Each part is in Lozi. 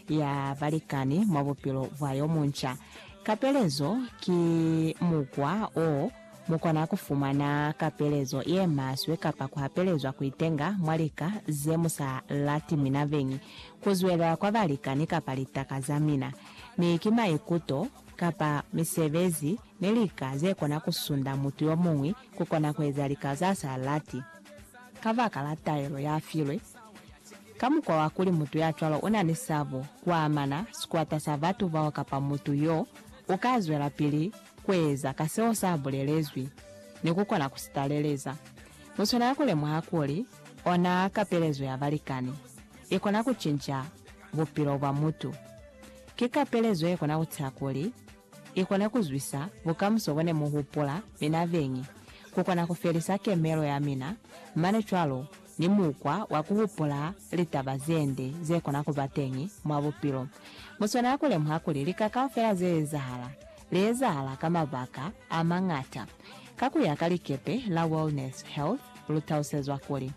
ya balikani mwa bupilo bwa yo munca. Kapelezo ki mukwa o mu kona ku fumana kapelezo ye maswe kapa ku hapelezwa ku itenga mwa lika ze mu sa lati mina beñi, ku zwelela kwa balikani kapa litaka za mina. Mi ki maikuto, kapa misebezi, ni lika ze kona ku sunda mutu yo muñwi ku kona ku eza lika za sa lati ka baka la taelo ya filwe. Ka mukwa wa kuli mutu ya cwalo u na ni sabo, ku amana, sikwata sa batu bao kapa mutu y'o, u ka zwelapili ku eza ka seo sa bulelezwi, ni ku kona ku si taleleza. Mu swanela ku lemuha kuli ona kapelezo ya balikani i kona ku cinca bupilo bwa mutu. Ki kapelezo ye kona ku tisa kuli i kone ku zwisa bukamuso bo ne mu hupula mina beñi, ku kona ku felisa kemelo ya mina, mane cwalo ni mukwa wa ku hupula litaba ze nde ze kona ku ba teñi mwa bupilo. Mu swanela ku lemuha kuli lika kaufela ze ezahala, li ezahala ka mabaka a mañata. Ka ku ya ka likepe la Wellness Health, lu talusezwa kuli,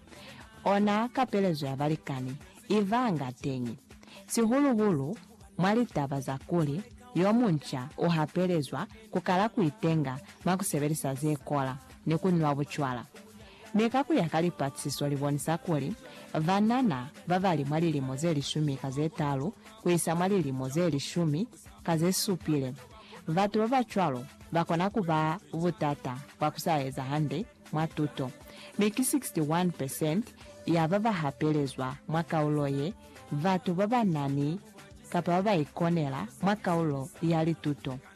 Ona kapelezo ya balikani i vanga teñi, sihulu-hulu mwa litaba za kuli yo munca u hapelezwa ku kala ku itenga mwa ku sebelisa ze kola ni ku nwa bucwala. Mi ka ku ya ka lipaciso li bonisa kuli, banana ba ba li mwa lilimo ze lishumi ka ze talu ku isa mwa lilimo ze lishumi ka ze supile, batu ba ba cwalo ba kona ku ba butata bwa ku sa eza hande mwa tuto. Mi ki 61 percent ya ba ba hapelezwa mwa kaulo ye, batu ba ba na ni kapa ba ba ikonela mwa kaulo ya lituto.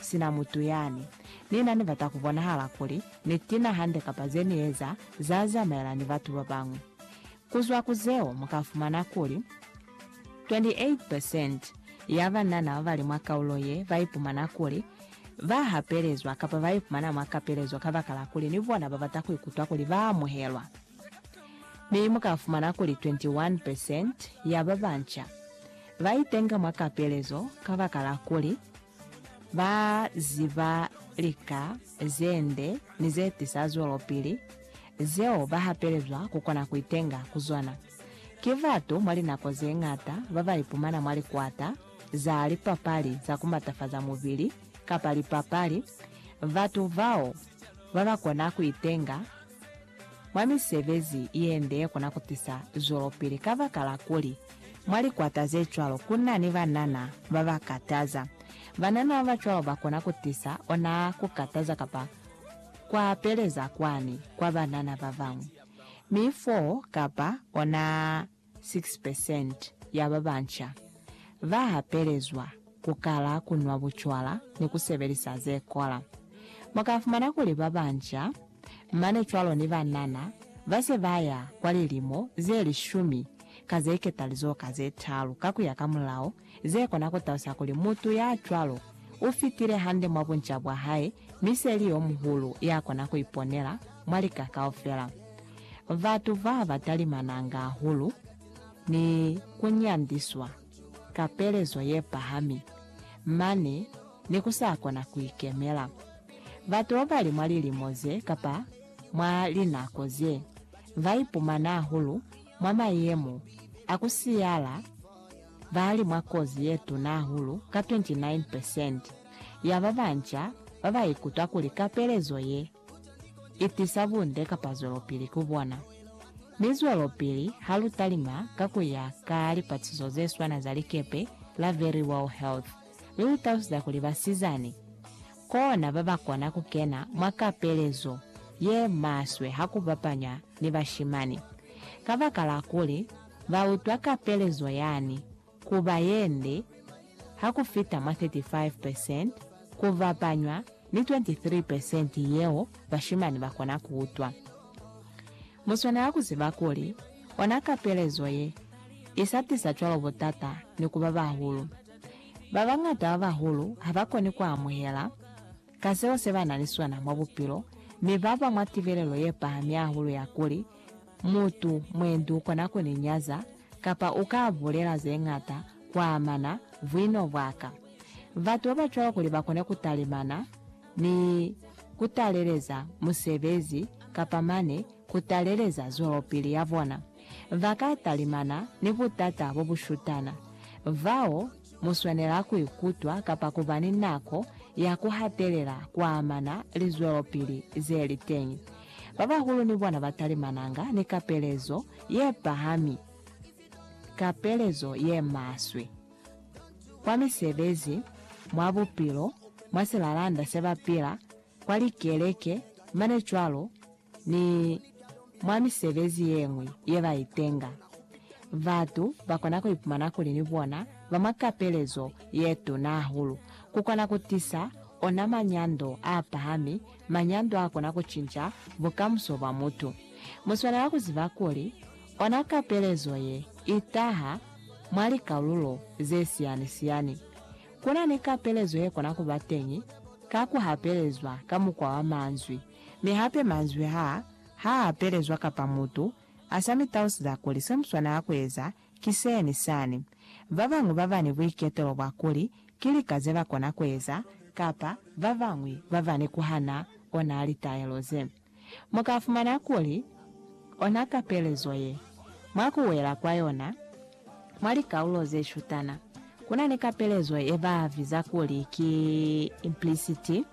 Sina mutu yani ni na ni bata ku bonahala kuli ni tina hande kapa ze ni eza za zamaela ni batu ba bañwi. Ku zwa ku zeo mu ka fumana kuli, 28 percent ya banana ba ba li mwa kaulo ye ba ipumana kuli ba hapelezwa kapa ba ipumana mwa kapelezo kabakala kuli ni bona ba bata ku ikutwa kuli ba amuhelwa. Mi mu ka fumana kuli 21 percent ya ba banca ba itenga mwa kapelezo kabakala kuli Ba ziba lika ze nde ni ze tisa zwelopili zeo ba hapelezwa ku kona ku itenga ku zona. Ki batu mwa linako ze ñata ba ba ipumana mwa likwata za lipapali za ku matafaza mubili kapa lipapali. Batu bao ba ba kona ku itenga mwa misebezi ye nde ye kona ku tisa zwelopili kabakala kuli Mwa likwata ze cwalo ku na ni banana ba ba kataza. Banana ba ba cwalo ba kona ku tisa ona ku kataza kapa ku apeleza kwani kwa banana ba bañwi. Mi 4 kapa ona 6 percent ya ba banca ba apelezwa ku kala ku nwa bucwala ni ku sebelisa ze kola. Mu ka fumana kuli ba banca mane cwalo ni banana ba se ba ya kwa lilimo ze lishumi ka ze ketali zo ka ze talu ka ku ya ka mulao, ze kona ku talusa kuli mutu ya cwalo u fitile hande mwa bunca bwa hae mi se li yo muhulu ya kona ku iponela mwa lika kaufela. Batu ba ba talimananga hahulu ni ku nyandiswa ka pelezo ye pahami mane ni ku sa kona ku ikemela. Batu babali mwa lilimo ze kapa mwa linako ze, ba ipumana hahulu mwa mayemo a ku siyala ba li mwa kozi ye tuna hahulu ka 29 percent ya ba banca ba ba ikutwa kuli kapelezo ye i tisa bunde kapa zwelopili ku bona. Mi zwelopili ha lu talima ka ku ya ka lipatiso ze swana za likepe la Verywell Health. mi lu talusiza kuli basizani kona ba ba kona ku kena mwa kapelezo ye maswe ha ku bapanywa ni bashimani, kabakala kuli ba utwa kapelezo yani ku ba ye nde ha ku fita mwa 35 percent ku bapanywa ni 23 percent yeo bashimani ba kona ku utwa. Mu swanela ku ziba kuli ona kapelezo ye i sa tisa cwalo butata ni ku ba bahulu. Ba bañata ba bahulu ha ba koni ku amuhela ka seo se ba na ni sona mwa bupilo, mi ba ba mwa tibelelo ye pahami hahulu ya kuli, Mutu, mwendi u kona ku ni nyaza, kapa u ka bulela ze ñata ku amana buino bwa ka. Batu ba ba cwalo kuli ba kone ku talimana ni ku taleleza musebezi kapa mane ku taleleza zwelopili ya bona, ba ka talimana ni butata bo bu shutana, bao mu swanela ku ikutwa kapa ku ba ni nako ya ku hatelela ku amana lizwelopili ze li teñi. Ba bahulu ni bona ba talimananga ni kapelezo ye pahami, kapelezo ye maswe, kwa misebezi, mwa bupilo, mwa silalanda se ba pila, kwa likeleke, mane cwalo, ni mwa misebezi ye ñwi ye ba itenga. Batu ba kona ku ipumana kuli ni bona ba mwa kapelezo ye tuna hahulu. Ku kona ku tisa ona manyando a pahami, manyando a kona ku cinca bukamuso bwa mutu. Mu swanela ku ziba kuli ona kapelezo ye i taha mwa likalulo ze siyani-siyani. Ku na ni kapelezo ye kona ku ba teñi ka ku hapelezwa ka mukwa wa manzwi. Mi hape manzwi ha ha apelezwa kapa mutu a sa mi tausiza kuli se mu swanela ku eza ki se ni sani. Ba bañwi ba ba ni buiketelo bwa kuli ki lika ze ba kona ku eza kapa ba bañwi ba ba ni ku hana ona litaelo ze, mu ka fumana kuli ona kapelezo ye mwa ku wela kwa yona. Mwa likaulo ze shutana, ku na ni kapelezo ye ba viza kuli ki impliciti,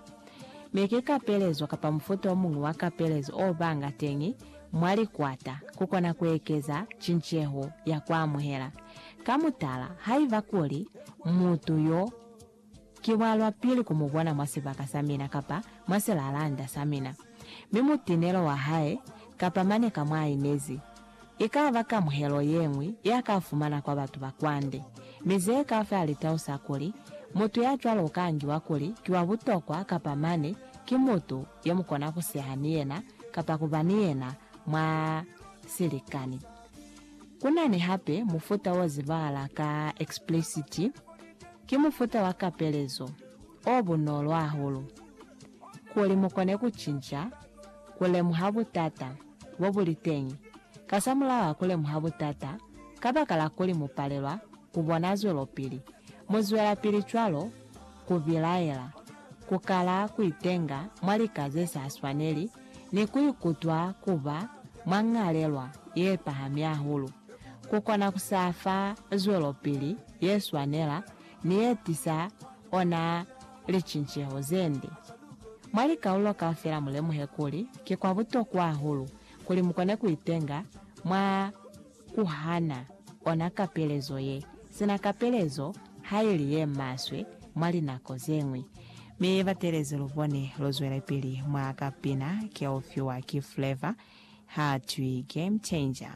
mi ki kapelezo kapa mufuta o muñwi wa kapelezo o banga teñi mwa likwata ku kona ku ekeza cinceho ya ku amuhela. Ka mutala, haiba kuli mutu yo Ki bwalwapili ku mu bona mwa sibaka sa mina kapa mwa silalanda sa mina, mi mutinelo wa hae, kapa mane ka mwa inezi, i ka ba kamuhelo ye ñwi ya ka fumana kwa batu ba kwande. Mi ze ka fa litau sa kuli, mutu ya cwalo u ka ngiwa kuli ki wa butokwa kapa mane ki mutu ye mu kona ku seha ni yena kapa ku ba ni yena mwa silikani. Ku na ni hape mufuta wo zibahala ka explicit. Ki mufuta wa kapelezo o bunolo hahulu kuli mu kone ku cinca ku lemuha butata bo bu li teñi kasamulaho wa ku lemuha butata kabakala kuli mu palelwa ku bona zwelopili. Mu zwelapili cwalo ku bilaela, ku kala ku itenga mwa lika ze sa swaneli, ni ku ikutwa ku ba mwa ñalelwa ye pahami hahulu. Ku kona ku sa fa zwelopili ye swanela ni ye tisa ona licinceho ze nde. Mwa likaulo kaufela mulemuhe kuli ki kwa butokwa hahulu kuli mukone kuitenga mwa kuhana ona kapelezo ye sina kapelezo haili ye maswe mwa linako zeñwi. Mi batelezi lubone luzwelepili mwa kapina ke ufiwa ki Flavour, hatwi Game Changer.